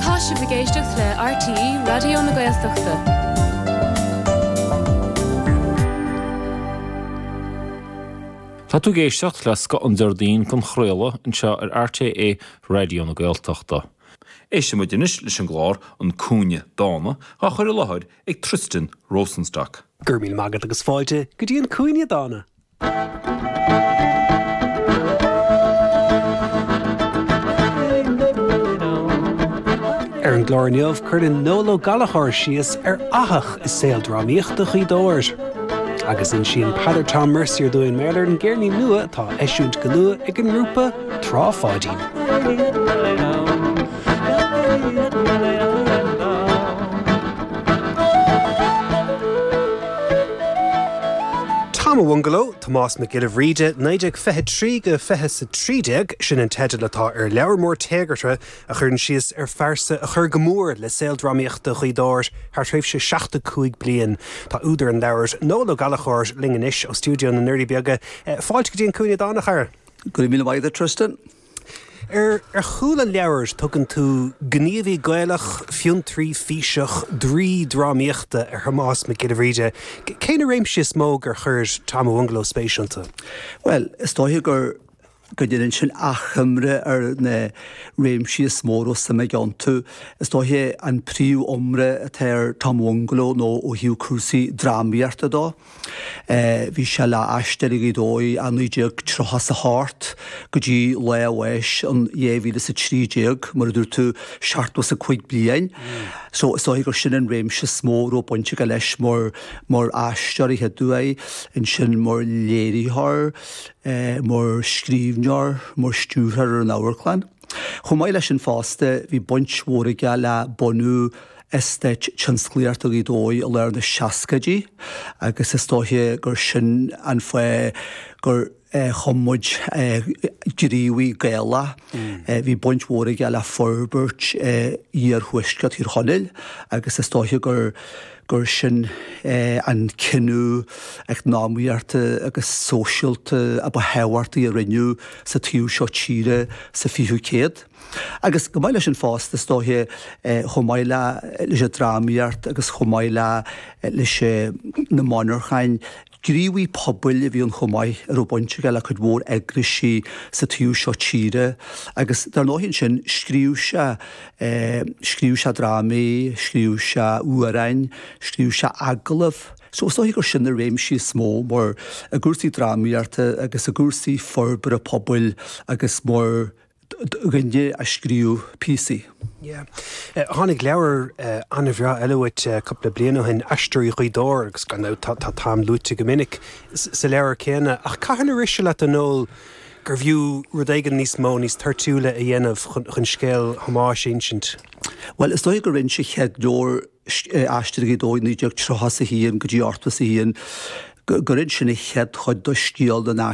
Tá sibh ag éisteacht le RTÉ Raidió na Gaeltachta. Tá tú ag éisteacht le scoth an Déardaoin den chraoladh anseo ar RTÉ Raidió na Gaeltachta. Éistfidh muid anois leis an gclár An Cúinne Dána, á chur i láthair ag Tristan Rosenstock. Go raibh míle maith agat agus fáilte go dtí An Cúinne Dána! Ar an gclár inniu, cuireann Noel Ó Gallchóir síos ar fhathach i saol drámaíochta Ghaoth Dobhair. Agus insíonn Peadar Tom Mercier dúinn mar gheall ar an gceirnín nua atá á eisiúint go luath ag an ngrúpa Trá Pháidín. Tom a' Bhungalow, Tomás Mac Giolla Bhríde 1923-2013, sin an teideal atá ar leabhar mór téagartha a chuireann síos ar phearsa a chuir go mór le saol drámaíochta Ghaoth Dobhair thar thréimhse 75 bliain. Tá údar an leabhair, Noel Ó Gallchóir, linn anois ó stiúideo na nDoirí Beaga. Fáilte go dtí An Cúinne Dána, a chara. Go raibh míle maith agat, Tristan. Ar chúl an leabhair tugann tú gníomhaí Gaelach, fiontraí, físeach, draoi drámaíochta ar Thomás Mac Giolla Bhríde. Cé na réimsí is mó gur chuir Tom a' Bhungalow spéis iontu? Bhuel, is dóiche go ndéanann sin achoimre ar na réimsí is mó a raibh suim aige iontu. Is dóiche an príomhiomrá atá ar Tom a' Bhungalow nó ó thaobh cúrsaí drámaíochta dó, Bhí sé le hAisteoirí Ghaoth Dobhair ó 1938 go dtí lá a bháis in 2013, mar a dúirt tú, seachtó is a cúig bliain. So is dóiche gur sin an réimse is mó a raibh baint aige leis mar mar aisteoir a chéaduair, ansin mar léiritheoir, mar scríbhneoir, mar stiúrthóir ar an amharclann. Chomh maith leis sin fosta, bhí baint mhór aige le bunú eastáit tionsclaíochta Ghaoth Dobhair i lár na seascaidí agus is dóiche gur sin an fáth gur chum muid gníomhaí Gaelach. Bhí baint mhór aige le forbairt iarthuaisceart Thír Chonaill agus is dóiche gur gur sin é an cinneadh eacnamaíochta agus sóisialta a ba thábhachtaí a rinneadh sa taobh seo tíre sa 20ú céad. Agus chomh maith leis sin fosta, is dóiche, chomh maith leis an drámaíocht agus chomh maith leis na monarchain, Gníomhaí pobail a bhí ann chomh maith a raibh baint aige le cuid mhór eagraisí sa taobh seo tíre agus dar ndóigh ansin scríobh sé, scríobh sé drámaí, scríobh sé amhráin, scríobh sé agallaimh so is dóiche gur sin na réimsí is mó mar i gcúrsaí drámaíochta agus i gcúrsaí forbartha pobail agus mar duine a scríobh píosaí. Yeah. Tháinig leabhar an-bhreá eile uait cúpla bliain ó shin, Aisteoirí Ghaoth Dobhair, agus gan dabht tá t'ainm luaite go minic sa leabhar céanna. Ach cathain a rith sé leat, a Noel, gurbh fhiú rud éigin níos mó, níos toirtiúla a dhéanamh chun scéal Thomáis a insint? Bhuel, is dóigh gur inis an chéad leabhar, Aisteoirí Ghaoth Dobhair, 1931 go dtí 81, gur inis sé an chéad chuid do scéal na.